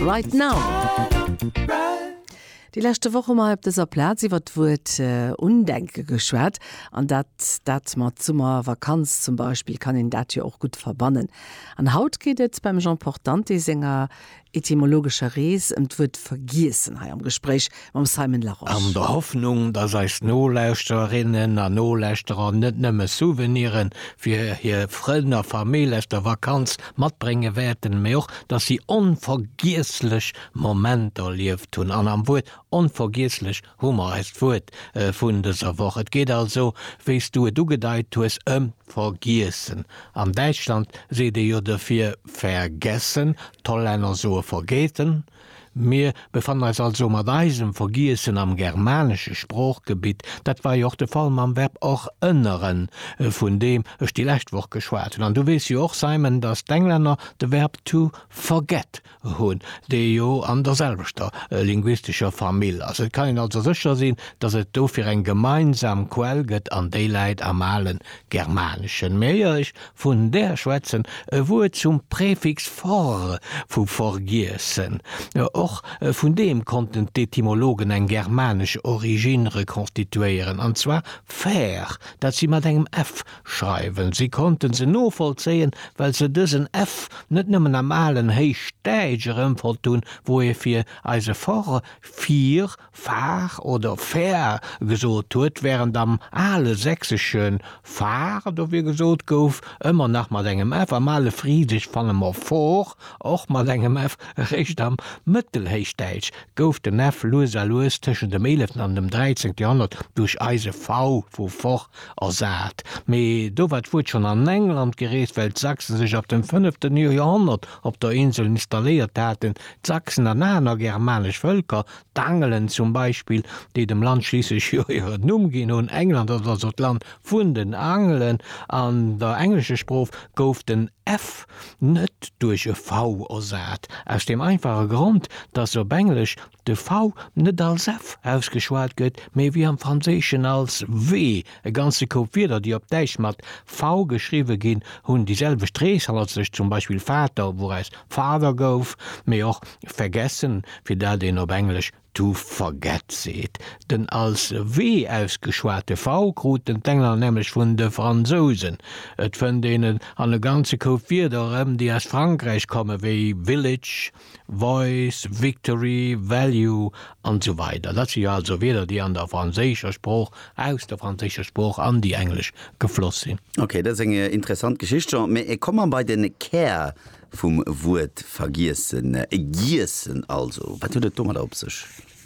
Right Now! Déi leschte Woch hu mer hei op dëser Plaz iwwert d'Wuert Undenke geschwat, an dat dat mat Summervakanz zum Beispill kann een dat jo och gutt verbannen. An haut geet et beim Jean Portante senger etymologescher Rees ëm d'Wuert Vergiessen hei am Gespréich mam Simon Larosche. An der Hoffnung, dass eis Nolauschtererinnen a Nolauschterer net nëmme Souvenire fir hir Frënn a Famill aus der Vakanz matbrénge wäerten, mee och, dass si onvergiesslech Momenter erlieft hunn. An am Wuert onvergiesslech hu mer eist Wuert vun dëser Woch. Et geet also, wéi s du et ugedeit hues, ëm Vergiessen. Am Däitschland seet ee jo dofir vergessen, d'Hollänner soe vergeten. Mir befannen eis also mat eisem Vergiessen am germanesche Sproochgebitt. Dat war jo och de Fall mam Verb och ënneren, vun deem ech déi lescht Woch geschwat hunn. An du weess jo och, Simon, datt d'Englänner de Verb to forget hunn, dee jo an derselwechter linguistescher Famill ass. Et kann een also sécher sinn, datt et dofir eng gemeinsam Quell gëtt, an déi läit am ale Germaneschen. Mee éier ech Vun der schwätzen, e Wuert zum Präfix for, vu vergiessen. Och vun deem konnten d'Etymologen eng germanesch Originn rekonstituéieren, an zwar fer, dat si mat engem f schreiwen. Si konnte se novollzéien, well se dësen f net nëmmen am alen Héichdäitsch erëmfonnt hunn, wou e fir eise for, fier, Far oder Fär gesot huet, wärend am ale Sächsesche Far dofir gesot gouf, ëmmer nach mat engem f. Am ale Frisesch fanne mer for, och mat engem f. Eréischt am Mëttelhéichdäitsch gouf den f lues a lues tëschent dem eeleften an dem dräizéngte Joerhonnert duerch eise v vu for ersat. Mee do war d'Wuert schonn an England gereest, well d'Sachsen sech ab dem fënnefte Joerhonnert op der Insel installéiert haten. D'Sachsen an aner germanesch Vëlker D'Angelen zum Beispill, déi dem Land schliisslech jo hiren Numm ginn hunn, England ass also d'Land vun den Angelen, an der englescher Sproof gouf den f net duerch e v ersat, aus deem einfache Grond, datt op Englesch de v net als f ausgeschwat gëtt, mee wéi am Franséischen als w. E ganze Koup Wierder, déi op Däitsch mat v geschriwwe ginn, hunn déi selwecht Reeshalzecht, zum Beispill Vater, wouraus Fader gouf, mee och vergessen, fir dat een op Englesch to forget seet. Den als w ausgeschwate v kruten d'Engler nämlech vun de Fransousen. Et fënnt een et an e ganze Koup Wierder erëm, déi aus Frankräich kommen, wéi village, Voice, Victory, Value an esou weider Dat si jo also Wierder, déi an der franséischer Sprooch, aus der franséischer Sprooch an déi englesch gefloss sinn. Ok, dat ass eng interessant Geschicht, Jean. Mä komme mer bei den Kär vum Wuert vergiessen, giessen also. Wat huet et domadder op sech?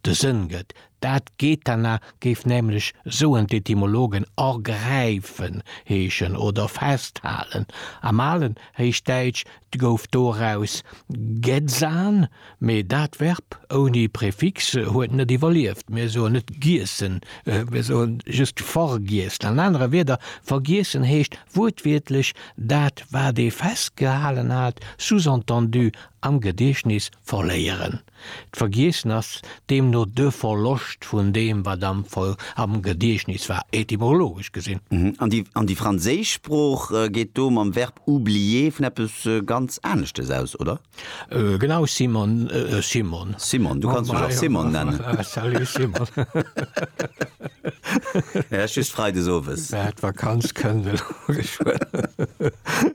de Sënn gëtt. Dat Gethana géif nämlech, soen d'Etymologen, ergräifen heeschen oder festhalen. Am alen Héichdäitsch gouf doraus Gethsan, mee dat Verb ouni Prefix huet net iwwerlieft. Mir soen net giessen, mir soe just vergiessen. An anere Wierder, vergiessen heescht wuertwiertlech dat, wat ee festgehalen hat, sous-entendu am Gediechtnis verléieren. D'Vergiessen ass deemno de Verloscht vun deem, wat am Gediechtnis war, etymologesch gesinn. An déi franséisch Sprooch geet do mam Verb oublier vun eppes ganz aneschtes aus, oder? Genau, Simon, Simon. Simon, du kanns mech och Simon nennen. Salut, Simon. Just freides owes. D'Vakanz kënnt elo geschwënn.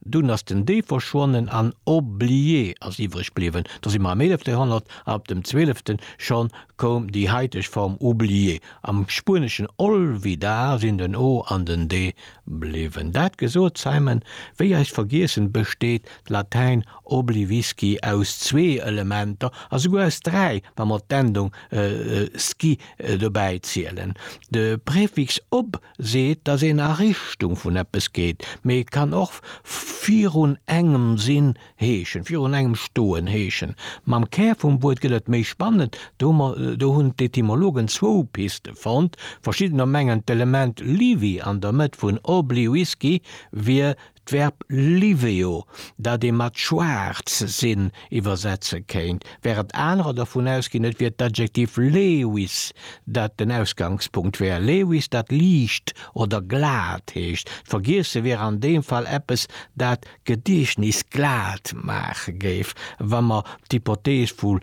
Dunn ass den Dee verschwonnen an Oublie ass iwwreg bliwwen. Do si mer am eelefte Joerhonnert a op dem zwölfte scho koum déi haiteg Form Oublie. Am Spueneschen olvidar sinn den o an den de bliwwen. Dat gesot, Simon, wéi eis vergiessen, besteet d'Latäin oblivisci aus zwee Elementer a souguer aus dräi, wa mer d'Endung sci dobäi zielen. De Prefix ob seet, dass een a Richtung vun eppes geet, mee et kann och virun engem sinn heeschen, virun engem stoen heeschen. Mam Kär vum Wuert gëtt et méi spannend, do hunn d'Etymologen zwou Piste fonnt, Verschiddener mengen d'Element liwi an der Mëtt vun obli-wisky wier D'Verb liveo, dat ee mat schwaarz sinn iwwersetze kéint, wärend anerer dervun ausginn, et wier d'Adjektiv levis, dat den Ausgangspunkt wär, levis, dat liicht oder glat heescht. D'Vergiesse wier an deem Fall eppes, dat d'Gediechtnis glat maache géif, wa mer d'Hypothees vu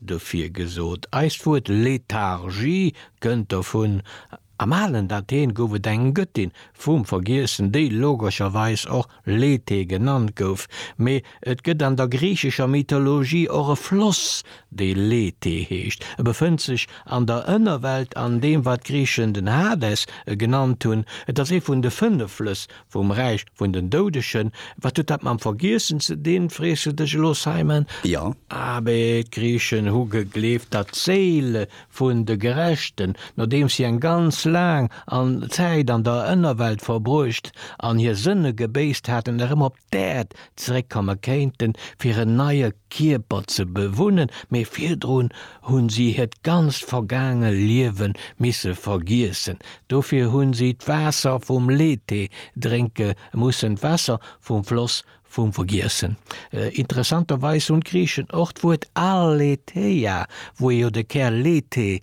Dofir gesot, eist Wuert Lethargie kënnt dovun, am alen Athen gouf et eng Gëttin vum Vergiessen, déi logescherweis och Lethe genannt gouf, mee et gëtt an der griichescher Mythologie och e Floss, dee Lethe heescht. E befënnt sech an der Ënnerwelt, an deem wat d'Griichen den Hades genannt hunn. Et ass ee vun de fënnef Flëss Vum Räich vun den Doudegen. Wat huet dat mam Vergiessen ze dinn, frees du dech elo, Simon? Jo. Abe, d'Griichen hu gegleeft, datt d'Séile vun de Gerechten, nodeems si eng ganz laang an Zäit an der Ënnerwelt verbruecht an hir Sënne gebéisst haten, erëm op d'Äerd zeréckkomme kéinten, fir en neie Kierper ze bewunnen, mee virdrun hu si hiert ganzt vergaange Liewe misse vergiessen. Dofir hu si d'Waasser vum Lethe drénke mussen, d'Waasser vum Floss vum Vergiessen. Interessanterweis hunn d'Griichen och d'Wuert a le the'a, wou jo de Kär Lethe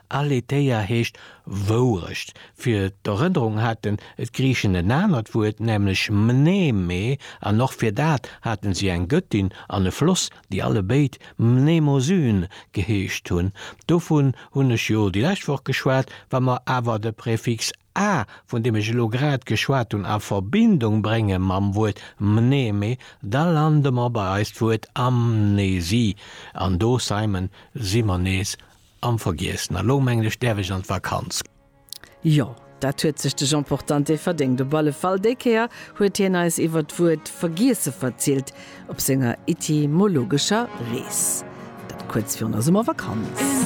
Aletheia heescht Wourecht. Fir d'Erënnerung hate d'Griichen en anert Wuert, nämlech mneme, an och fir dat hate si eng Gëttin an e Floss, déi allebéid Mnemosyne geheescht hunn. Dovun hunn ech jo déi lescht Woch geschwat. Wa mer awer de Prefix a, vun deem ech elo grad geschwat hunn, a Verbindung brénge mam Wuert mneme, da lande mer bei eist Wuert Amnesie. An do, Simon, si mer nees Am vergiessen, a lo mengen ech däerf ech an d'Vakanz. Jo, dat huet sech de Jean Portante verdéngt. Op alle Fall, déi Kéier huet hien eis iwwert d'Wuert vergiesse verzielt op senger etymologescher Rees. Dat kuerz virun der Summervakanz.